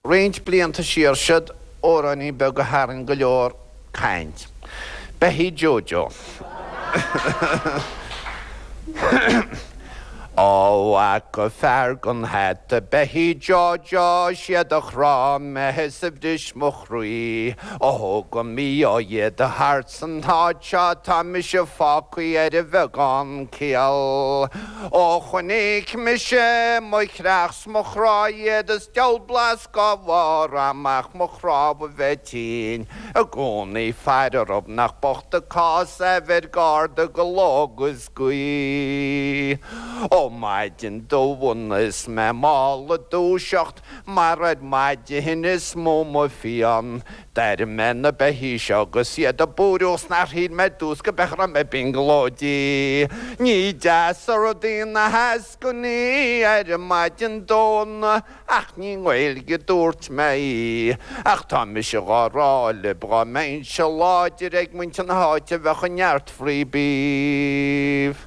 Roinnt blianta siar siúd, amhráinín beag a tharraing go leor caint. Beithígh Jojo. Ó, fhaca fear gan hata Beithígh Jojo, siad a chrá mé is a bhris mo. croí. Ó thug an mí-ádh iad thart san áit seo tá mise fágthaí ar bheagán céill. Ó chonaic mise mo chreach 's mo chrá iad is diabhal blas dhá bharr a'm ach mo chnámha a bheith tinn i gcónaí ag faire orthub nach bocht an cás é a bheith ar garda de ló 'gus d'oíche. Ó maidin Domhnaigh 's mé mall ag dúiseacht. Mar ar maidin is mó mo phian. D'airigh mé na beithígh seo agus iad ag búireadh is nár shíl mé i dtús go b'é a raibh mé ag brionglóidí. Ní deas an rud í na heascainí ar maidin Domhnaigh ach ní i nGaeilge a dúirt mé í. Ach tá mise dhá rá libh, dhá mbeinnse láidir ag muintir na háite bheadh neart free beef.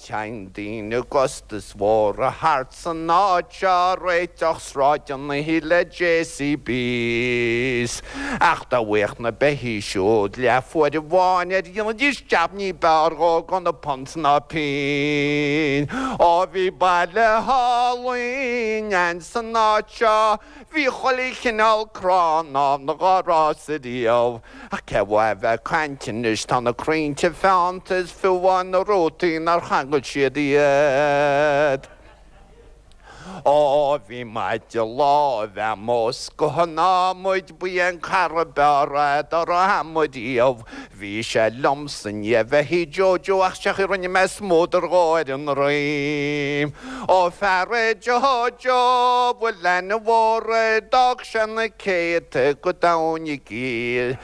Téann daoine i gcostais mhóra thart san áit seo, ag réiteach sráideanna le JCBs, ach dá bhfaigheadh na beithígh siúd leathuair amháin air dhéanfaidís jab ní b'fhearr dhó gan punt ná pínn. Ó bhí baile álainn ann san áit seo, bhí chuile chineál crann ann dhár fhás ariamh, Ach cén mhaith a bheith ag caint anois, tá na crainnte feannta is fiú amháin na rútaí nár changail siad iad. Ó, bhí maide láimhe a'm 's de thogha an adhmaid, ba é an cara ab fhearr é dhá raibh a'm riamh. Bhí sé liomsa i ndiaidh beithígh Jojo ach sé an chaoi rinne mé smúdar dhó ar a ndroim. Ó, fear é Jojo a bhfuil ainm mhór air, d'fhág. Sé na céadta go domhain i gcill,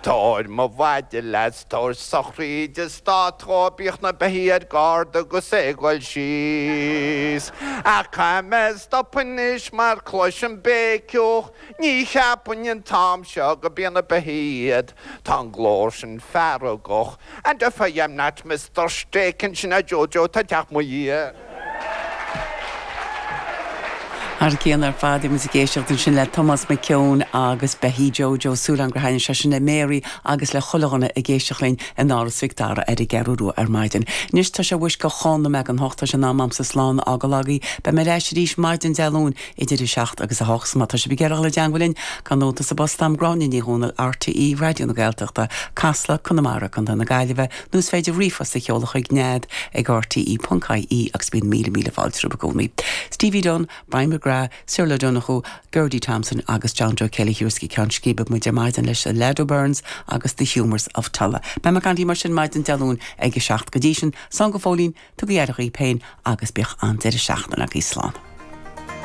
Tabhair mo mhaide leat 's tabhair sochraíd stáit dhó Bíodh na beithígh ar garda 'gus é 'goil síos Ach caithfidh mé stopadh anois mar cloisim béiciúch Ní cheapfainn an t-am seo go b'iad na beithígh iad Tá an glór sin feargach, and if I am not misdurstaken, sin é Jojo atá ag teacht mo dhiaidh. Thar cionn ar fad, bhí muid ag éisteacht ansin le Tomás Mac Eoin agus Beithígh Jojo, súil agam gur thaitnigh sé sin le Mary agus le chuile dhuine ag éisteacht linn in Áras Mhic Dara ar an gCeathrú Rua ar maidin. Anois, tá sé suas go chúig nóiméad dhon hocht, tá sé in am agamsa slán a fhágáil agaibh. Beidh mé ar ais arís maidin Dé Luain. Idir 7 agus 8 má tá sibh ag iarraidh dul i dteangmhail linn cuirigí nóta sa bpost agam Gráinne Ní Dhomhnaill RTÉ Raidió na Gaeltachta, Casla, Conamara, Co na Gaillimhe nó is féidir ríomhphost a sheoladh chuig nead ag rte.ie agus bíonn míle míle fáilte romhaibh i gcónaí. Stevie Dunne, Brian McGrath, Cyril O'Donoghue, Geraldine Thompson agus John Joe Kelly a thabharfas go ceann scríbe muid ar maidin leis The Laurel, Burns agus The Humours of Tulla. Beidh mé ag caint libh mar sin maidin Dé Luain ag 7 go dtí sin slán go fóillín, tugaigh aire dhaoibh féin agus bíodh an-deireadh seachtaine agaibh. Slán.